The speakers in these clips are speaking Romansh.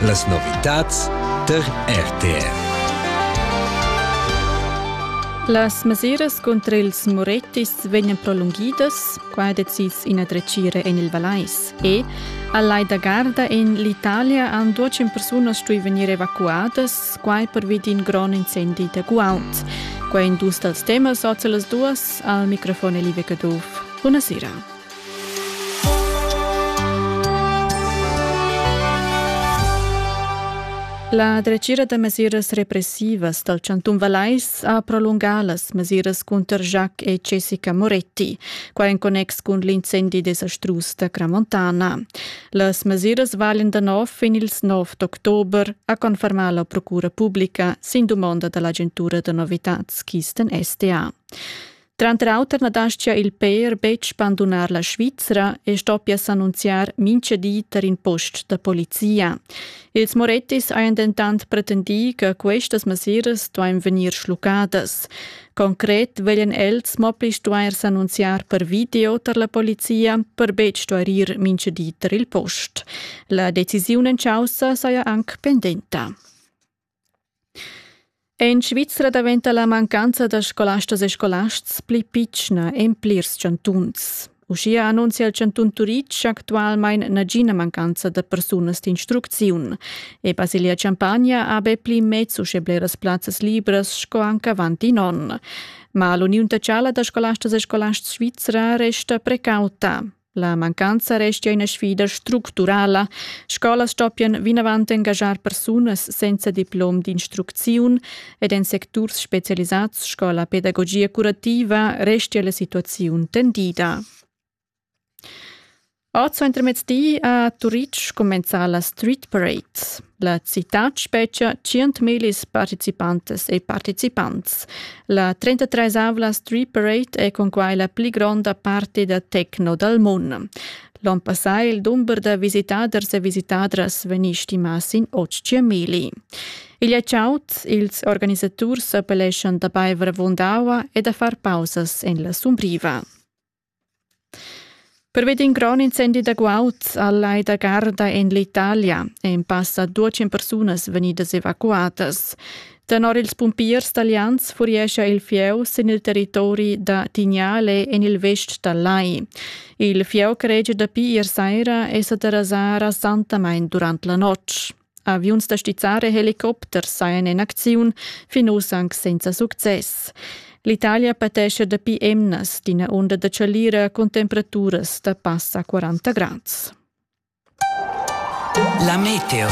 Las novitads tar RTR. Las mesiras cunter ils Moretis vegnan prolunghidas, qua decis ina dretgira en il Valais. E a Lai da Garda en l'Italia han duecin persunas stuì vegnir evacuadas, quai pervi d'in grond incendi da guaud. Quai è in dus dals temas oz las duas. Al microfon è Live Caduff. Bunasera. La dretgira da mesiras repressivas dal chantun Valais ha prolungà las mesiras cunter Jacques e Jessica Moretti, qua en connex cun l'incendi desastrus da Cramontana. Las mesiras valen da nov fin ils 9 d'october, ha confermà la procura pubblica sin dumonda da l'agentura da novitads Kisten SDA. Tranter auter na dastgia il pèr betg bandunar la Svizra e stoppia s'annunziar mincha di tar in post da polizia. Ils Morettis hajan dentant pretendì che questas mesiras duain vegnir schluccadas. Concret veglian els mo pli stuair s'annunziar per video tar la polizia, per betg stuair ir mincha di tar il post. La decisiun en caussa saja anc pendenta. En Svizra daventa la mancanza da scolastas e scolasts pli pitschna en plirs chantuns. Uschia annunzia il chantun Turitg actualmein nagina mancanza da persunas d'instrucziun e Basilia-Champagna ha be pli mez uschè bleras plazzas libras sco anche avant in onn. Ma l'uniun tacciala da scolastas e scolasts svizra resta precauta. La mancanza restia ina sfida structurala, scolas stoppian vinavant engaschar persunas senza diplom d'instrucziun ed en secturs specialisads sco la pedagogia curativa restia la situaziun tendida. Oz intermezdi a Turitg cumenza la Street Parade. La citad spetgia 100.000 participantas e participants. La 33 avla Street Parade è cunquai la pli gronda party da techno dal mund. L'onn passà il dumber da visitaders e visitadras vegni stimà sin 800.000. Igl è chaud, ils organisaturs appelleschan da baiver avunda aua e da far pausas en la sumbriva. Pervi d'in grond incendi da guaud al Lai da Garda en l'Italia èn passa dudesch persunas vegnidas evacuadas. Tenor ils pumpiers talians furiescha il fieu sin il territori da Tignale en il vest dal lai. Il fieu che regia dapi ier saira è sa derasà rasantamain durant la notg. Aviuns da stizzar e helicopters sajan en acziun fin uss anc senza success. L'Italia patescha dapi emnas d'ina onda da chalira cun temperaturas da passa 40 grads. La meteo.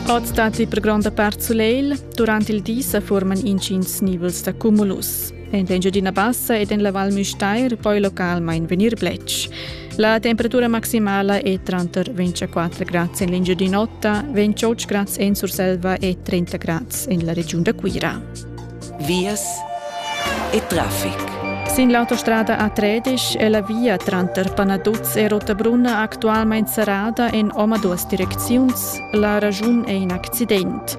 Oz datti per gronda part sulegl. Durant il di sa forman intgins nivels da cumulus. En Engiadina Bassa ed en la Val Müstair poi localmain vegnir bletsch. La temperatura maximala è tranter 24 grads en l'Engiadin'Ota, 28 grads en Surselva e 30 grads en la regiun da Cuira. Vias e traffic. Sin l'autostrada A13 è la via tranter Panaduz e Rottabrunna actualmain serrada en omaduas direcziuns. La ragiun è in accident.